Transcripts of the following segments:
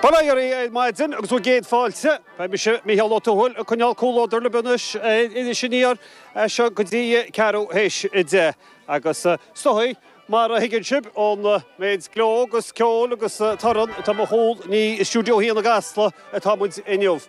Bail ó Dhia oraibh ar maidin agus bhur gcéad fáilte. Beidh mise, Mícheál Ó Tuathail, ag coinneáil comhluadar libh anois ar Iris Aniar as seo go dtí a ceathrú théis a deich. Agus is dóigh, mar a thuigeann sibh ón méid gleo agus ceoil agus torann atá i mo chúl, ní i Stiúideo Haon i gCasla atá muid inniu.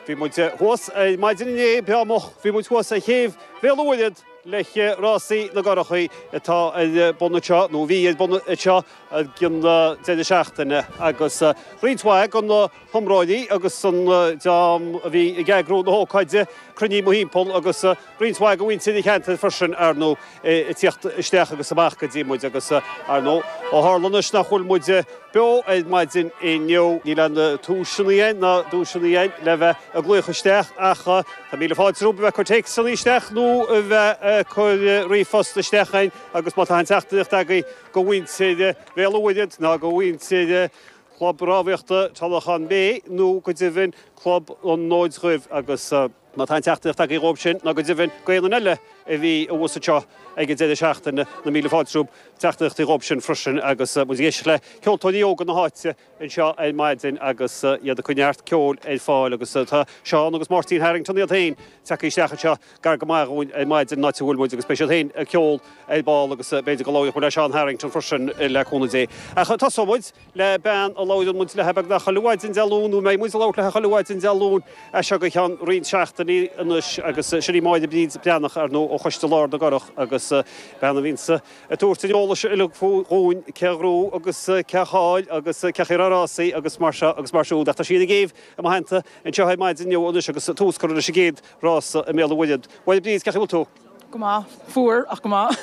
Bhí muid thuas ar maidin inné, breá moch, bhí muid thuas ar chéibh Bhéal an Mhuirthead le rásaí na gcurachaí atá ar bun anseo, nó a bhí ar bun anseo, i gcaitheamh an deireadh seachtaine agus roinnt mhaith de na hiomróirí agus den dream a bhí ag eagrú na hócáide cruinnithe mórthimpeall agus roinnt mhaith de mhuintir an cheantair freisin, ar ndóigh, ag tíocht isteach agus amach go dtí muid. Agus, ar ndóigh, ó tharla anois nach bhfuil muid beo ar maidin inniu, níl an duaiseanna dhéin ná duaiseanna dhéin le bheith ag glaoch isteach ach tá míle fáilte romhaibh a bheith ag cur téacsanna isteach nó a bheith ag cur ríomhphost isteach chugainn agus má tá aon teachtaireacht agaibh, go mhuintir Bhéal an Mhuirthead ná go mhuintir Chlub Rámhaíochta Tullaghan Bay nó go deimhin Club an Fhóid Dhuibh agus má tá aon teachtaireacht agaibh dhóibh sin ná go deimhin d'aon duine eile a bhí abhus anseo ag an deireadh seachtaine, na mílte fáilte romhaibh, teachtaireachtaí dhóibh sin freisin agus muid ag éisteacht le ceoltóirí óga na háite. anseo ar maidin agus iad ag cur neart ceoil ar fáil agus tá Seán agus Máirtín Harrington iad féin tagtha isteach anseo gar go maith dhúinn ar maidin, an áit a bhfuil muid, agus beidh siad féin ag ceol ar ball agus b'fhéidir go labhróidh muid le Seán Harrington freisin le cúnamh Dé. Ach tosóidh muid le bean a labhraíonn muid léi beagnach chuile mhaidin Dé Luain, nó a mbeidh muid ag labhairt léi chuile mhaidin Dé Luain as seo go ceann roinnt seachtainí anois agus sin í Máire Bríd Breathnach, ar ndóigh, ó Choiste Lár na gCurach agus bean a bhíonns Ag tabhairt an eolais uilig dhúinn cé a ghnóthaigh agus cé a chaill agus cé chaoi a raibh na rásaí agus mar seo agus mar siúd. Ach tá sí ar an gcéibh i mo theannta anseo ar maidin inniu anois agus tús curtha leis an gcéad rása i mBéal an Mhuirthead. A Mháire Bríd, cé chaoi bhfuil tú? Go maith. Fuar, ach go maith.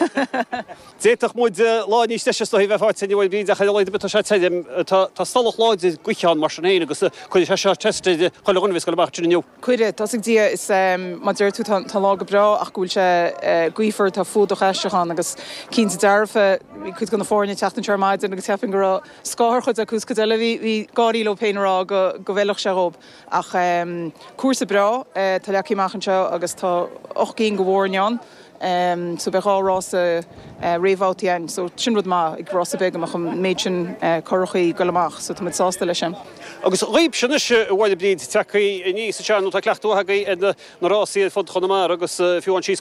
D'fhéadfadh muid lá níos deise is dóigh a bheith faighte inniu, a Bhríd, ach ar a laghad tá sé tirim. Tá stolladh láidir gaoithe ann mar sin féin agus cuirfidh sé seo test ar chuile dhuine a bheas ag goil amach ansin inniu. Cuirfidh. Tá's ag Dia is mar a deir tú tá an lá go breá ach go bhfuil sé gaofar, tá fuadach aisteach ann agus cinnte dearfa, bhí cuid de na foirne ag teacht anseo ar maidin agus cheapfainn go raibh scáth ar chuid acu is cuid eile bhí ag gáirí leo féin ag rá go bhfeilfeadh sé dhóib. Ach cúrsa breá atá leagtha amach anseo agus tá ocht gcinn go fhoirne ann. so beidh dhá rása réamhbhabhta ann, so sin rud maith ag rása beag go mbeadh an méid sin curachaí ag goil amach, so tá muid sásta leis sin. Agus dhaoibhse anois, a Mháire Bríd, ag tíocht aníos anseo nó tá cleachtadh maith agaibh ar na rásaí ar fud Chonamara agus fiú ansíos go.